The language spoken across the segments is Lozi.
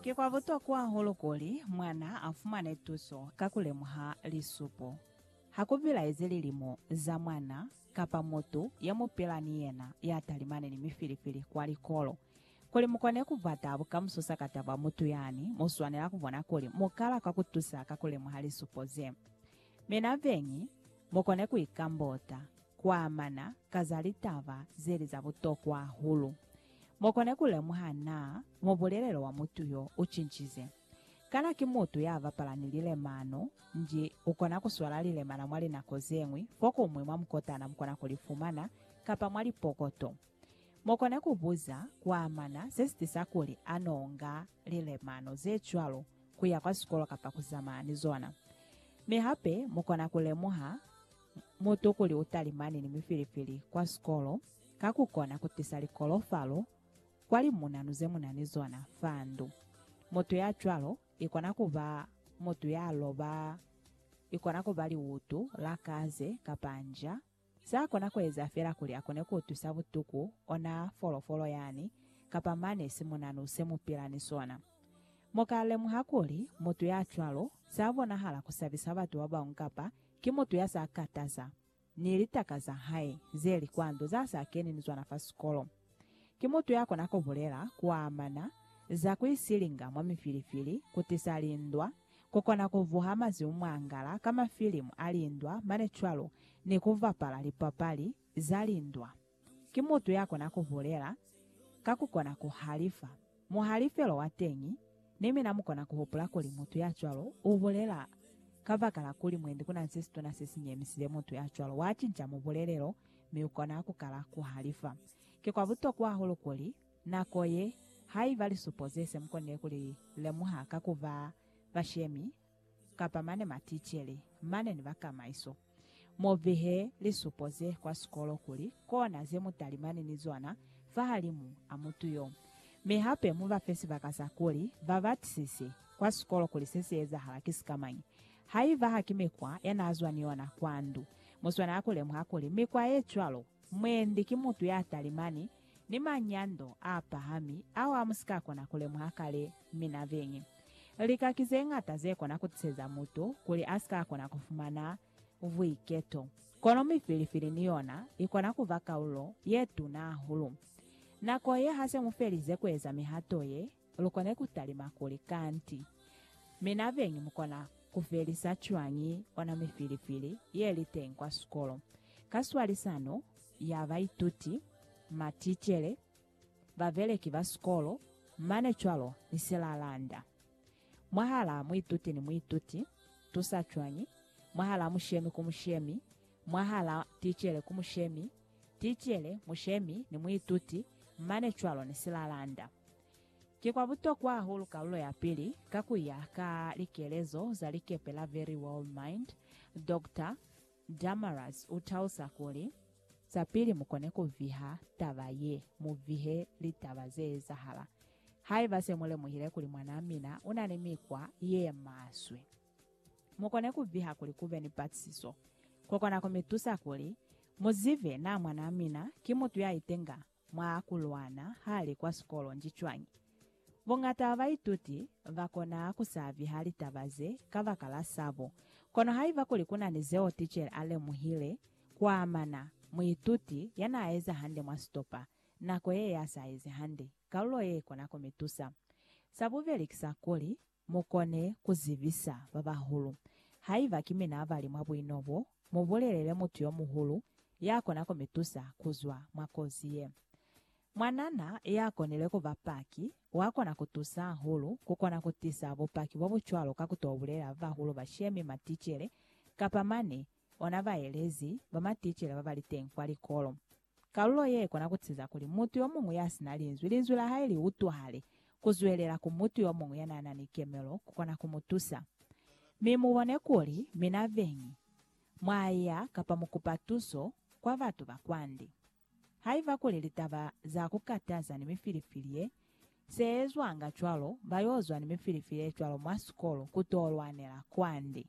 Ki kwa butokwa hahulu kuli mwana a fumane tuso ka ku lemuha lisupo. Ha ku bilaezi lilimo za mwana kapa mutu ya mu pila ni yena ya talimani ni mifilifili kwa likolo. Kuli mu kone ku bata bukamuso sakataba mutu yani, mu swanela ku bona kuli mu kala kwa ku tusa ka ku lemuha lisupo ze. Mi na beñi, mu kone ku ikambota. kuamana ka za litaba zeli za butokwa hahulu. Mokona kulemuha na mubulelelo wa mutu yo ucincize. Kana ki mutu yabapala ni lilemano, nji ukona kuswala lilemana mwa linako zeñwi fokuñwi mwa mukotana mukona kulifumana, kapa mwa lipokoto. Mokona kubuza kuamana sesitisa kuli anoonga lilemano zecwalo, kuya kwa sikolo kapa kuzamana ni zona. Mi hape mukona kulemuha. mutokuli u talimani ni mifilifili kwa sikolo ka ku kona ku tisa likolofalo kwa limunanu ze mu na ni zona fa ndu. Mutu ya cwalo i kona ku ba mutu ya loba, i kona ku ba liutu la kaze kapa nja. Sa kona ku eza fela kuli a kone ku utwisa butuku ona folofolo yani kapa mane simunanu se mu pila ni sona. Mu ka lemuha kuli mutu ya cwalo sa bonahala ku sabisa batu ba bañwi kapa Ki mutu ya sa kataza ni litaka za hae ze li kwa ndu, za sa keni ni zona fa sikolo. Ki mutu ya kona ku bulela ku amana za ku isilinga mwa mifilifili, ku tisa lindwa, ku kona ku vuha mazimu mwa ngala ka mafilimu a lindwa mane cwalo ni ku bapala lipapali za lindwa. Ki mutu ya kona ku bulela ka ku kona ku halifa. Muhalifelo wa teñi, ni mina mu kona ku hupula kuli mutu ya cwalo u bulela kabakala kuli mwendi ku na se situna se si nyemisile mutu ya cwalo. Wa cinca mubulelelo, mi u kona ku kala ku halifa. Ki kwa butokwa hahulu kuli, nako ye, haiba lisupo ze se mu konile ku li lemuha ka ku ba bashemi kapa mane maticele, mane ni bakamaiso. Mu behe lisupo ze kwa sikolo kuli kona ze mu talimani ni zona fahalimu a mutu yo. Mi hape mu ba fe sibaka sa kuli ba batisise kwa sikolo kuli se si ezahala ki sikamañi. Haiba ha ki mikwa ya n'a zwa ni yona kwa ndu, mu swanela ku lemuha kuli mikwa ye cwalo mwendi ki mutu ya talimani Ni manyando a pahami ao a mu si ka kona ku lemuha kale, mi na biñi lika ki ze ñata ze kona ku tiseza mutu kuli a si ka kona ku fumana buiketo. Kono mifilifili ni yona i kona ku ba kaulo ye tuna hahulu. Nako ye ha se mu felize ku eza mihato ye, Lukona kutalima kuli, Kanti, mi nabeñi mukona kufelisa cwañi ona mifilifili yeliteñi kwa sikolo ka swalisano ya baituti, maticele, babeleki ba sikolo, mane cwalo ni silalanda? Mwahala muituti ni muituti, tusa cwañi? Mwahala mushemi ku mushemi, mwahala ticele ku mushemi, ticele, mushemi, ni muituti, mane cwalo ni silalanda. Ki kwa butokwa hahulu kalulo ya pili, ka ku ya ka likelezo za likepe la Very World Mind, Doctor Damarus u tausa kuli, Sa pili mu kone ku viha taba ye, mu vihe litaba ze ezahala. Haiba se mu lemuhile kuli mwanaa mina u na ni mikwa ye maswe, Mu kone ku viha kuli ku be ni patisiso. Ko kona ku mi tusa kuli mu zibe naa mwanaa mina ki mutu ya itenga mwa ku lwana ha li kwa sikolo nji cwañi. Buñata bwa baituti ba kona ku sa viha litaba ze kabakala sabo. Kono haiba kuli ku na ni zeo tichere a lemuhile ku amana muituti ya naa eza hande mwa sitopa, nako ye ya sa ezi hande, kalulo ye i kona ku mi tusa. Sa bubeli ki sa kuli, Mukone kuzibisa babahulu. Haiba ki mina abali mwa buino bo, mubulelele mutu yomuhulu yakona kumitusa kuzwa mwa kozi ye. Mwanana yakonile kuba paki wakona kutusa hahulu kukona kutisa bupaki bobucwalo ka kutobulela babahulu bashemi, maticele, kapa mane ona baelezi ba maticela ba ba li teñi kwa likolo. Kalulo ye i kona ku tiza kuli mutu yo muñwi ya si na linzwi, linzwi la hae li utwahale. Ku zwelela ku mutu yo muñwi ya n'a na ni kemelo ku kona ku mu tusa. Mi mu bone kuli, mina beñi, mwa ya kapa mu kupa tuso kwa batu ba kwande. Haiba kuli litaba za ku kataza ni mifilifili ye se ezwanga cwalo, ba yo zwa ni mifilifili ye cwalo mwa sikolo ku to lwanela kwande.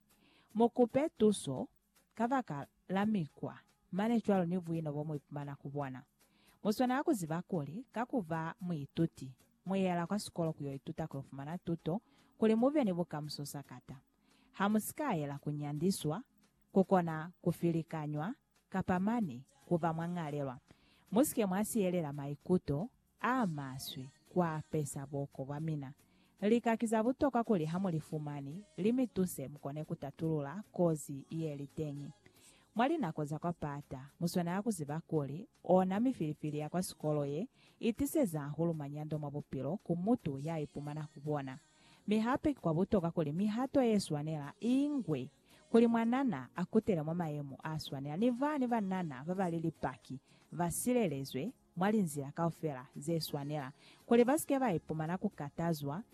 Mu kupe tuso kabaka la mikwa mane cwalo ni buino bo mu ipumana ku bona. Mu swanela ku ziba kuli ka ku ba muituti, mu yela kwa sikolo ku yo ituta ku yo fumana tuto kuli mu be ni bukamuso sakata. Ha mu si ka yela ku nyandiswa ku kona ku filikanywa kapa mane ku ba mwa ñalelwa. Mu si ke mwa siyelela maikuto a maswe ku apesa buko bwa mina. Lika ki za butokwa kuli ha mu li fumani, li mi tuse mu kone ku tatulula kozi ye li teñi. Mwa linako za kwa pata, mu swanela ku ziba kuli ona mifilifili ya kwa sikolo ye i tiseza hahulu manyando mwa bupilo ku mutu ya ipumana ku bona. Mi hape ki kwa butokwa kuli mihato ye swanela i ngwe. kuli mwanana a kutele mwa mayemo a swanela ni ba ni banana ba ba li Lipaki, ba silelezwe mwa linzila kaufela ze swanela, kuli ba si ke ba ipumana ku katazwa